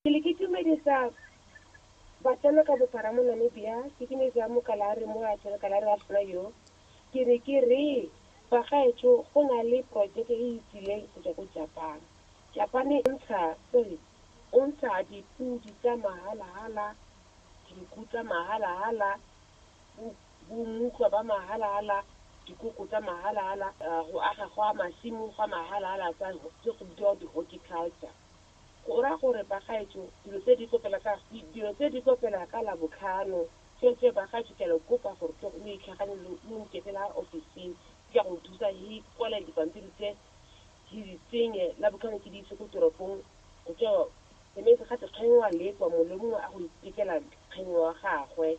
Ke le ke tumedisa batsalo ka bophara mo Namibia ke tumedisa mokalare mo a tshwere kalare wa rona yo ke re ke re bagaetsho go na le projeke e e tsileng go tswa ko Japan Japan e ntsha sorry o ntsha dipudi tsa mahalahala dinku tsa mahalahala bo mmutlwa ba mahala-hala, dikoko tsa mahala-hala, go aga gwa masimo gwa mahala-hala tsa tse go bidiwa di horticulture. Go raya gore bagaetsho dilo tse di tlo fela ka dilo tse di tlo fela ka labotlhano. Tsweetswee bagaetsho ke a le kopa gore tle lo itlhaganye lo lo nke fela office-ing ke a go thusa he kwale dipampiri tse he di tsenye labotlhano ke di ise ko toropong go tswa that means gate kgeng wa lekwa mongwe le mongwe a go ithekela kgeng wa gagwe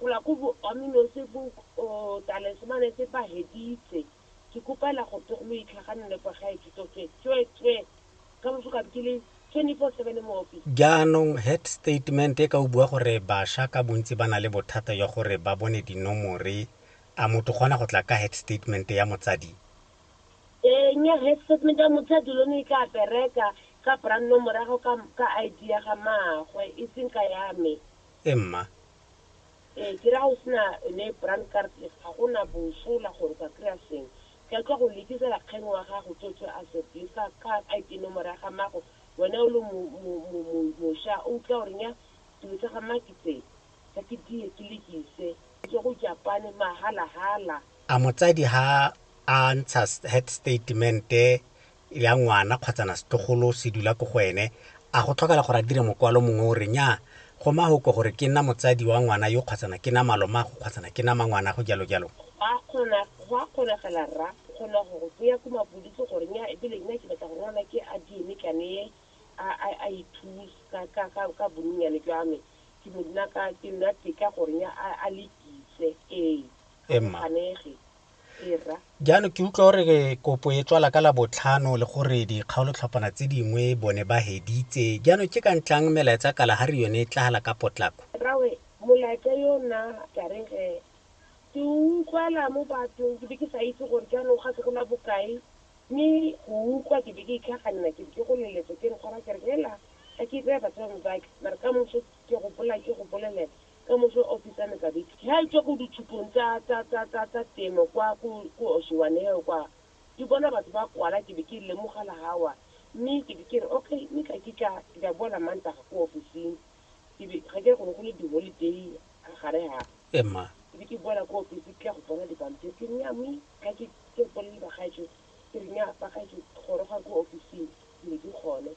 Gola ko bo Amino se bo o tale se mane se ba heditse. Ke kopela go tog lo itlhaganele kwa gae Kitsofe tswe tswe. Ka moso ka be ke le 24 seven mo office. Jaanong head statement e ka o bua gore basha ka bontsi ba na le bothata jwa gore ba bone dinomore, a motho o kgona go tla ka head statement ya motsadi? Ee nya head statement ya motsadi lone e tla bereka ka bra nomore ya gago ka ka ID ya ga maagwe e seng ka ya me. e mma. Ee, ke ra o se na yone brand card e, ga go na bosola gore o ka kry-a seng. Ke tlo go lekisa rakgeng wa gago Tsotso a said, Lisa ka ID nomoro ya ga mmago, wena o le mosha o utlwa gore nya dilo tsa ga mma ke tse, tla ke diye ke lekise, ke tswa go Japane mahala-hala. A motsadi ha a ntsha head statement-e ya ngwana kgotsa setlogolo se dula ko go ene, a go tlhokala gore a dire mokwalo mongwe o re nnyaa go mahoko gore ke nna motsadi wa ngwana yo kgotsa ke nna malomaago kgotsa ke nna mangwanago jalo jalo. Go a kgona, go a kgonagala rra go kgona go go tseya ko mapodisi gore nnyaa e bile nna ke batla gore ngwana ke a DNA ke a neye a a a ithuse ka ka ka ka bonnyane jwa me ke bo nna ka ke nna teka gore nnyaa a a lekise ee, a go ganege. Jaanong ke utlwa gore kopo e tswala ka la botlhano le gore dikgaolotlhopana tse dingwe bone ba heditse jaanong ke ka ntlang melaetsa kalahari yone e tlagala ka potlako rawe molaetsa yo nna ka re ge ke utlwala mo bathong ke be ke sa itse gore jaanong ga se go la bokae mme go utlwa ke be ke itlhaganela ke ke go leletsa ke re tshwara ke re hela ga ke tseye batswame bake mare ka moso ke gopola ke go bolelela ka moso o fetsa mekabethe ha e tswa ko ditshupong tsa, tsa, tsa, tsa, tsa temo kwa ko, ko Oshiwaneho kwa. Ke bona batho ba kwala, ke be ke lemoga la hawa. Mme ke be ke re, Okay, mme tla ke tla, ke tla boa Lamantaga ko ofising. Ke be, ga ke re go ne go le di-holiday ha gare ha. Ee, mma. Ke be ke boela ko ofising, ke tla go bona dipampiri. Ke re, Nnyaa, mme ga ke, ke bolelele bagaetsho, ke re, Nnyaa, bagaetsho, gorogang ko ofising. Ke be ke gone.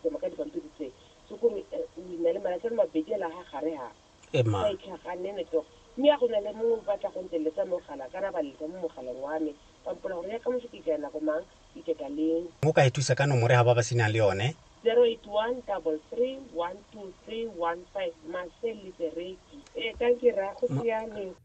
Tsoma ka dipampiri tse. Tsokong e o e na le malatsi a le mabedi a laga gare ga. E ma. Sa e tlhagane ne toga. Mme a go na le mongwe o batla go nteletsa mogala, ka ra ba letsa mo mogaleng wa me, ba mpola gore ya ka moso ke tlaya nako mang, e keta leng. Mo ka e thusa ka nomore ga ba ba senang le yone. 0813312315 Marcel Litereki. Ee, ka ke ra go siame.